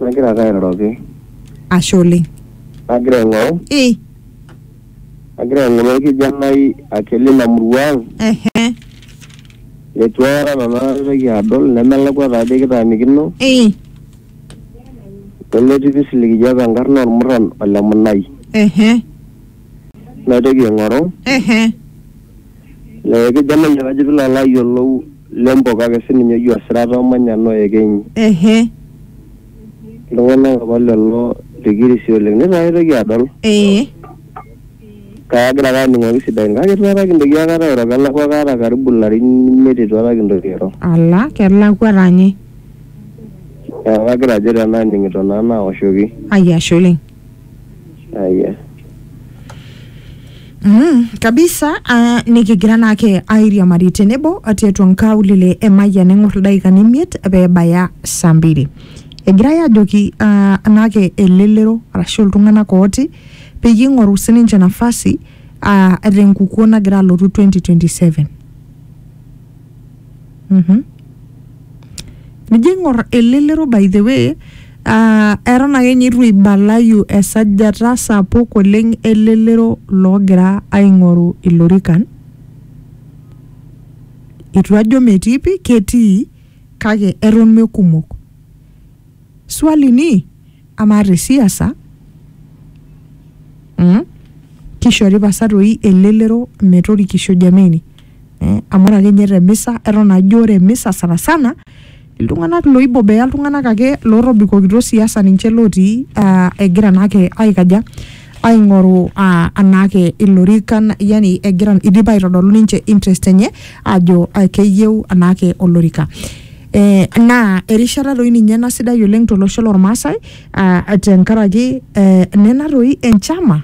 Nagira ake airoroki. Ashe oleng. Nagira aing'oru. Ii. Nagira aing'oru orkijanai ake lina murua ang. Ehe. Leitu aikata nanu aitoki adol nemelakua taadoi kitaanikino. Ii. Nemetii pii sii likijo enkarna ormurran ole Munai. Ehe. Naitoki aing'oru. Ehe. Ee kejo Amayian ajo pilo alo ayiolou Lempo kake sininye oji Osirata omanya noo Ekenyi. Ehe. Iltung'anak apa lelo likirisi oleng. Neitu aikata aitoki adol. Ee. Kake agira ake aning'oki sidain kake eitu aikata kintoki aikata airo kelakua kaata karibu ilarin imiet eitu aikata kintoki airo. Ala kelakua taa ninye. Neeku kagira ajo tenaa aning'ito naa naoshoki. Ai ashe oleng. Aya. Mm, kabisa uh, nikigira naake airiamari tenebo tiatua nkaulele emayian eng'or ildaikani imiet peebaya saa mbili egirai ajoki uh, naake elelero arashu iltung'anak ooti peyie ing'oru sininche nafasi uh, tenkukuo nagira alotu 2027 Mhm. nijo ing'or elelero by the way uh, eton ake ninye itu ibalayu esajata sapuk oleng elelero loogira aing'oru ilorikan itu ajo metii pi ketii kake eton mekumok Swali ni amaa te siasa mm, kishori pasa toi elelero metorikisho jameni eh, amu ore ake ninye te misa eton ajo ore misa sana sana iltung'anak loibobea iltung'anak ake lotobikokito siasa ninche lotii ah, egira naake aikaja aing'oru ah, anaake ilorikan yani egira idipa aitodolu ninche interest enye ajo ah, keyieu anaake olorika Eh, naa erishata doi ninye ena sidai oleng tolosho lormaasai ah, tenkaraki eh, nena doi enchama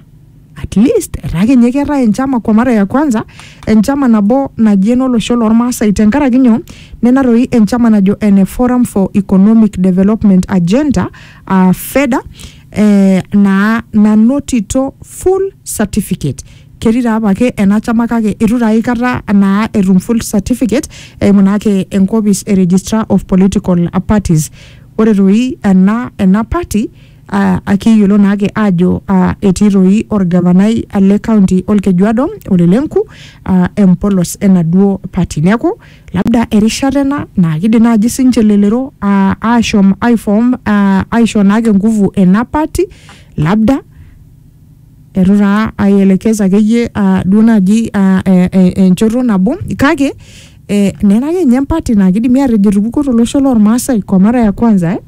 at least etaa kenye keetae enchama kwa mara ya kwanza enchama nabo naji enolosho lormaasai tenkaraki nyoo nena doi enchama najo ene forum for economic development agenda ah, feda eh, naa nanotito full certificate ketii taa apake ena chama kake eitu taa aikata naa etum full certificate eimu naake enkopis e registrar of political parties ore toi ena ena party uh, akiyiolo naake ajo uh, etii toi orgavanai le county olkejuado ole lenku uh, empolos enaduo party neeku labda erishata ena naa kidim naaji sinche lelero uh, ashom aifom uh, aisho naake nguvu ena party labda Eitu taa aielekeza akeyie ah, duo naaji ah, eh, eh, enchoto nabo kake eh, nena ake ninye empati naa kidimi atejo etupukuo tolosho lormaasai kwa mara ya kwanza eh?